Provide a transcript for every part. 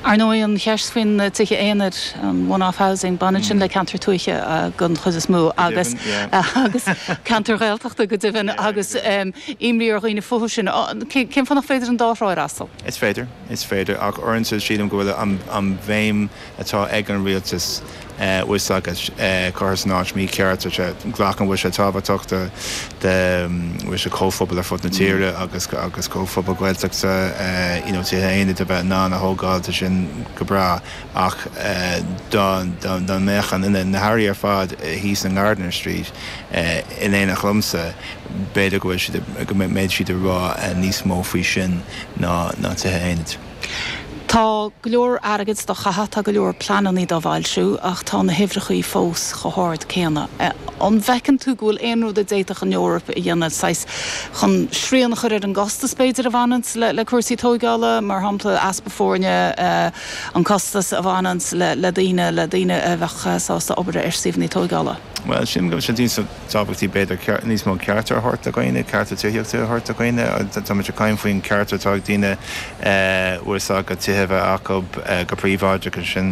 Ar ndóigh, an cheist faoin tithe aonair, an one-off housing, baineann sin le ceantair tuaithe den chuid is mó agus agus ceantair Ghaeltachta go deimhin agus imní ar dhaoine fúthu sin. Cén fáth nach féidir an dá thrá a fhreastal? Is féidir, is féidir ach uaireanta sílim go bhfuil an bhéim atá ag an rialtas fhios agat curtha san áit mícheart glacaim go bhfuil sé tábhachtach do do chomhphobail ar fud na tíre agus agus comhphobail Ghaeltachta you know tithe aonair a bheith in ann a thógáil tá sin go breá ach dá dá dá mbeadh an fhine na hairí ar fad thíos in Gardiner Street in éineacht liomsa b'fhéidir go bhfuil go mbeadh siad ag rá níos mó faoi sin ná ná tithe aonair. Tá go leor airgid dá chaitheamh, tá go leor pleanannaí dá bhfoilsiú, ach tá na huimhreachaí fós chomh hard céanna. An bhfeiceann tú go bhfuil aon rud a d'fhéadfadh an Eoraip a dhéanamh, saghas, chun srian a chur ar an gcostas, b'fhéidir, a bhaineanns le cúrsaí tógála, mar shampla, easpa foirne, an costas a bhaineanns le daoine, le daoine a bheadh sásta obair ar suíomhannaí tógála? Bhuel, sílim go bhfuil sé níos tábhachtaí b'fhéidir, ceart, níos mó cearta a thabhairt do dhaoine, cearta tithíochta a thabhairt do dhaoine. Tá muid ag caint faoin cheart atá ag daoine bhfuil 's agat tithe a bheith acu go príobháideach agus sin,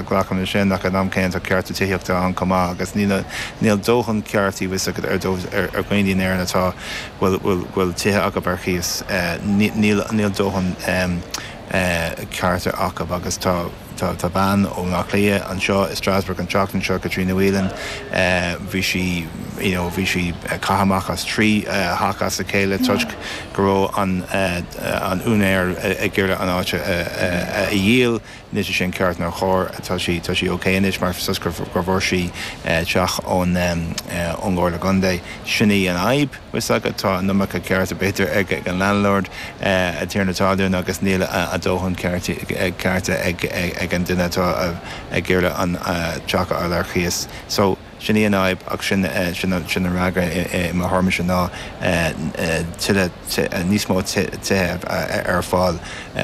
glacaim le sin, ach ag an am céanna tá cearta tithíochta ann chomh maith agus níl, níl dóthain ceartaí bhfuil 's agat ar dhaoine in Éirinn atá, bhfuil, bhfuil, bhfuil tithe acu ar chíos, níl, níl dóthain cearta acu agus tá. Tá bean ó Áth Cliath anseo i Strasbourg an tseachtain seo, Caitríona Whelan. Bhí sí, you know, bhí sí caite amach as trí theach as a chéile toisc go raibh an t-úinéir ag iarraidh an áit a dhíol. Anois níl sé sin ceart ná cóir, tá sí, tá sí okay anois mar 's agat gur bhfuair sí teach ón gComhairle Contae. Sin í an fhadhb. bhfuil 's agat, tá an iomarca cearta, b'fhéidir, ag an landlord, an tiarna talún, agus níl a dóthain cearta ag an duine atá ag iarraidh an teach a fháil ar chíos. So, sin í an fhadhb ach sé an freagra i mo thuairmise ná tuilleadh, níos mó tithe a bheith ar fáil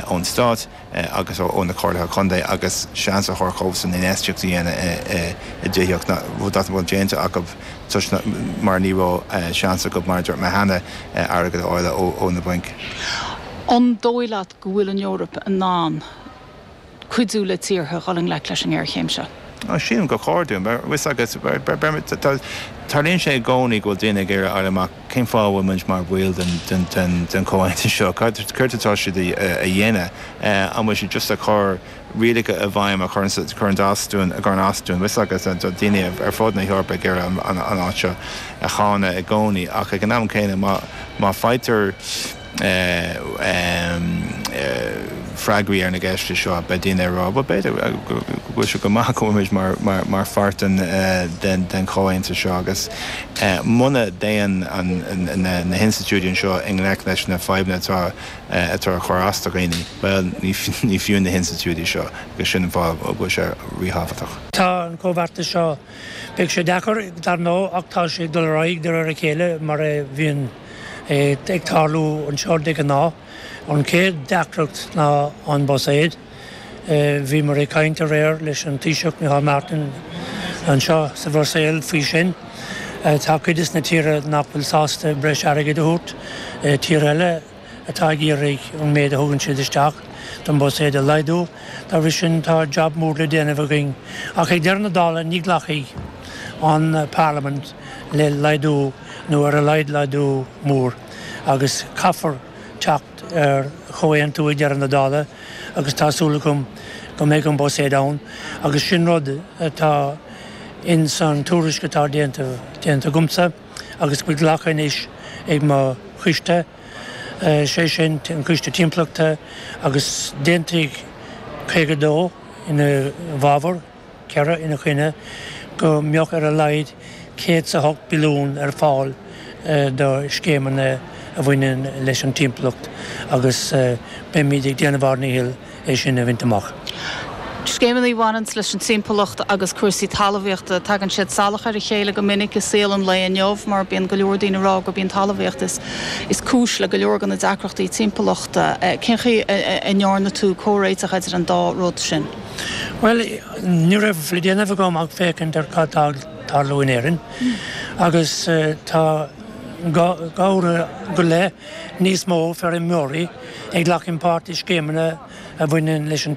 ón stát. agus ó na Comhairleacha Contae agus seans a thabhairt dóibhsean infheistíocht a dhéanamh i dtithíocht rud nach bhfuil déanta acu toisc nach, mar ní raibh seans acu, mar a dúirt mé cheana, airgead a fháil ó na bainc. An dóigh leat go bhfuil an Eoraip in ann cuidiú le tíortha a dhul i ngleic leis an ngéarchéim seo? Sílim gur chóir dúinn. Bhuel, 'fhios agat, tarlaíonn sé i gcónaí go bhfuil daoine ag iarraidh a fháil amach. cén fáth a bhfuil muid mar bhaill den chomhaontas seo, céard atá siad a dhéanamh, an bhfuil siad just ag cur rialacha i bhfeidhm a chuireann as dúinn, a chuireann as dúinn, bhfios agat, tá daoine ar fud na hEorpa ag iarraidh an áit seo a cháineadh i gcónaí ach ag an am céanna má faightear freagraí ar na gceist seo, beidh daoine ag rá, bhuel, b'fhéidir go bhfuil sé go maith go bhfuil muid mar pháirt den chomhaontas seo agus muna dtéann na hinstitiúidí anseo i ngleic leis na fadhbanna atá ag cur as do dhaoine, bhuel, ní fiú na hinstitiúidí seo agus sin an fáth a bhfuil sé ríthábhachtach. Tá an comhbheartas seo, beidh sé deacair, dar ndóigh, ach tá sé ag dul ar aghaidh de réir a chéile mar a bhíonn. é ag tarlú anseo de ghnáth. An chéad deacracht ná an Buiséad. Bhíomar ag caint aréir leis an Taoiseach Micheál Martin anseo sa Bhruiséil faoi sin. Tá cuid des na tíortha nach bhfuil sásta breis airgid a thabhairt, tíortha eile atá ag iarraidh an méid a thugann siad isteach don Buiséad a laghdú. Dá bhri sin tá jab mór le déanamh againn. Ach ag deireadh na dála ní ghlacfaidh an Parlaimint le laghdú. nó ar a laghad laghdú mór, agus caithfear teacht ar chomhaontú ag deireadh na dála, agus tá súil agam go mbeidh an Buiséad ann, agus sin rud atá ins an tuairisc atá déanta agamsa agus fuair glacadh anois ag mo choiste, sé sin an Coiste Timpeallachta, agus d'aontaigh 52 ina fhabhar. 4 ina choinne, go mbeadh ar a laghad 100 is a 8 billiún ar fáil do scéimeanna a bhaineann leis an timpeallacht agus beimid ag déanamh ár ndícheall é sin a bhaint amach. Scéimeanna a bhaineanns leis an timpeallacht agus cúrsaí talmhaíochta, tagann siad salach ar a chéile go minic i saol an lae inniu mar bíonn go leor daoine ag rá gurb í an talmhaíocht is cúis le go leor de na deacrachtaí timpeallachta. Cén chaoi a ndearna tú comhréiteach idir an dá rud sin? Bhuel, ní raibh le déanamh agam ach féachaint ar cad tá ag tarlú in Éirinn agus tá dhá uair go leith níos mó feirmeoirí ag glacadh páirte i scéimeanna a bhaineann leis an